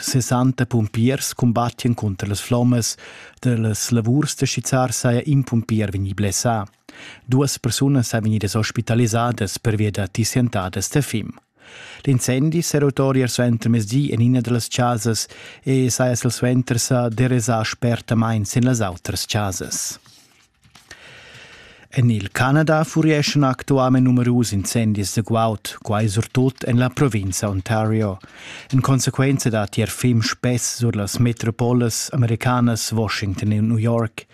60 pumpiers cumbattien cunter las flommas dallas lavurs da schizzar saja in pumpier vegni blessà. Duas persunas ein vegnidas ospitalisadas pervia da tissientadas da fim. L'incendi s'era otori suenter mezdi en ina dallas chasas e saja silsuenter sa derasà spertamain sin las outras chasas. En il Canada furieschan actualmain numerus incendis da guaud, quai surtut en la provinza Ontario. En consequenza datti er film spess sur las metropolas americanas Washington e New York.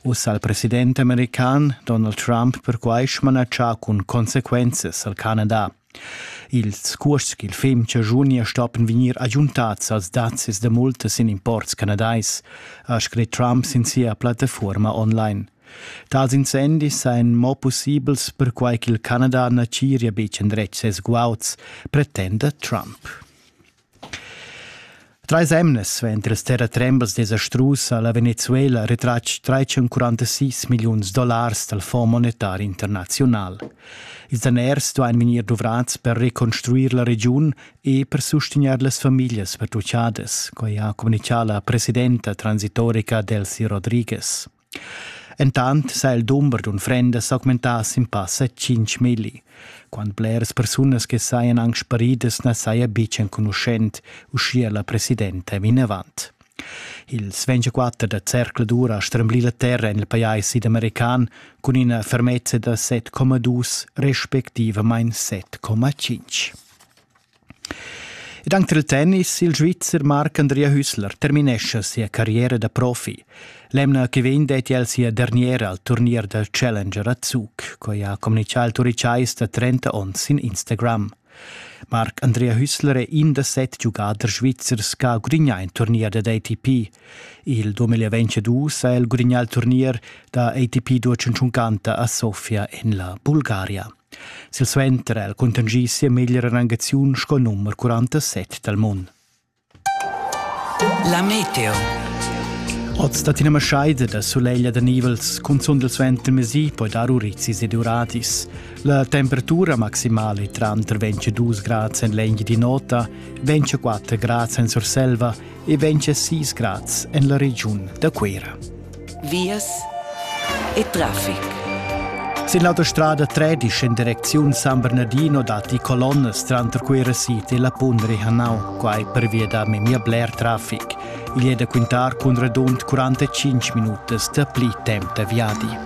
Uss al president american Donald Trump perquai smanatschà cun consequenzas al Canada. Ils cuosts ch'il fem chaschunia stoppen vegnir agiuntats als dazis da multas in imports canadais, ha scrit Trump sin sia plattafuorma online. Tals incendis sajan mo pussibels perquai ch'il Canada na tgiria betg endretg ses guauds, pretenda Trump. Trais emnas venter las terratrembas desastrusa ha la Venezuela retratg 346 milliuns dollars dal Fonds monetar internaziunal. Ils daners duain vegnir duvrads per reconstruir la regiun e per sustegnair las famiglias pertuchadas, quai ha communitgà la presidenta transitoria Delcy Rodriguez. Entant s'ha il dumber d'unfrendas augmentà sin passa tschintg milli. Quant bleras persunas che sajan anc sparidas na saja betg enconuschent, uschia la presidenta vinavant. Ils 24 da zercladur ha stremblì la terra en il pajais sidamerican cun ina fermezza da 7,2 respectivamain 7,5. Ed anc tril tennis, il Svizzer Marc Andrea Hüssler terminescha sia carriera da profi. L'emna che vegn detti el sia derniera al turnier da Challenger a Zug, quai ha communitgà il Turicais da 30 onns sin Instagram. Marc Andrea Hüssler è in da set giugaders svizzers che ha gudignà in turnier dad ATP. Il 2022 ha el gudignà il turnier da ATP 250 a Sofia en la Bulgaria. Silsuenter ha el cuntanschì sia meglra rangaziun sco numer 47 dal mund. La meteo. Oz dat ina maschaida da sulegl da nivels, cunzunt il suenter mesi poi dar urizis ed uradis. La temperatura maximale tranter 22 grad en legna di nota, 24 grad en Surselva e ventscha sis grads en la regiun da Cuira. Vias e traffic. Sin l'autostrada 13 en direcziun San Bernardino datti colonnas tranter Cuira City e la Pundri Hanau, quai pervia da memia bler traffic. Igl è da quintar cun radund 45 minutas dapli temp da viadi.